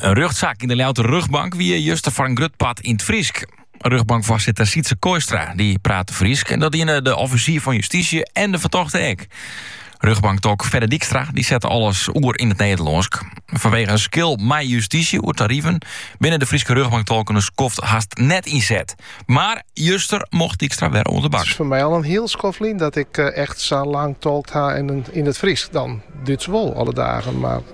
In rjochtsaak yn de Ljouwter rjochtbank wie juster foar in grut part yn it Frysk. Rjochtbankfoarsitter Sietse Kooistra dy prate Frysk en dat diene de offisier fan justysje en de fertochte ek. Rjochtbanktolk Fedde Dykstra dy sette alles oer yn it Nederlânsk. Fanwege in skil mei justysje oer tariven binne de Fryske rjochtbanktolken in skoft hast net ynset. Mar juster mocht Dykstra wer oan de bak. It is foar my al in hiel skoft lyn dat ik echt sa lang tolkt ha yn it Frysk. Yn it Dútsk wol alle dagen, mar.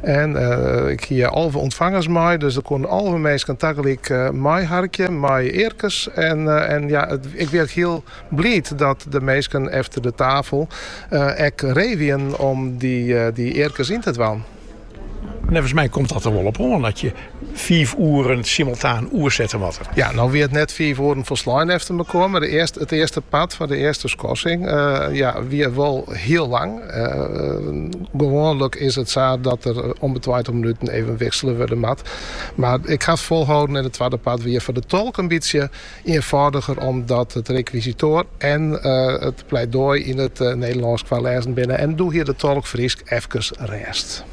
En ik hie alve ûntfangers mei, dus der koenen alve minsken tagelyk meiharkje mei earkes. En ja, ik wie ek hiel bliid dat de minsken efter de tafel ek ree wienen om dy earkes yn te dwaan. Neffens my komt dat der wol op oan. fiif oeren simultaan oersette moatte. Ja, no wie it net fiif oeren folslein efter mekoar, mar de earste, it earste part foar de earste skorsing, ja, wie wol hiel lang. gewoanlik is it sa dat der om 'e tweintich minuten even wiksele wurde moat, mar ik ha it folholden en it twadde part wie foar de tolk in bytsje ienfâldiger omdat it rekwisitoar en it pleidooi yn it Nederlânsk foarlêzen binne en doe hie de tolk Frysk efkes rêst.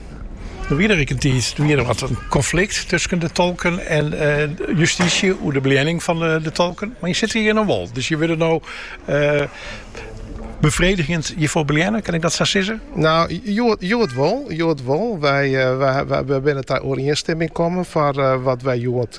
Der wie der ek in tiid, der wie wat in konflikt tusken de tolken en justysje oer de beleanning fan de tolken. Mar je sitte hjir no wol, dus je wurde no befredigjend hjirfoar beleanne, kin ik dat sa sizze? No, hjoed wol. Wy binne ta oerienstimming kommen foar wat wy hjoed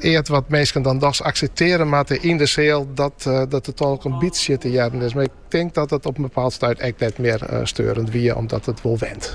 eat wat minsken dan dochs akseptearje moatte yn de seal, dat dat de tolk in bytsje te hearren is. Mar ik tink dat it op in bepaald stuit ek net mear steurend wie, omdat it wol went.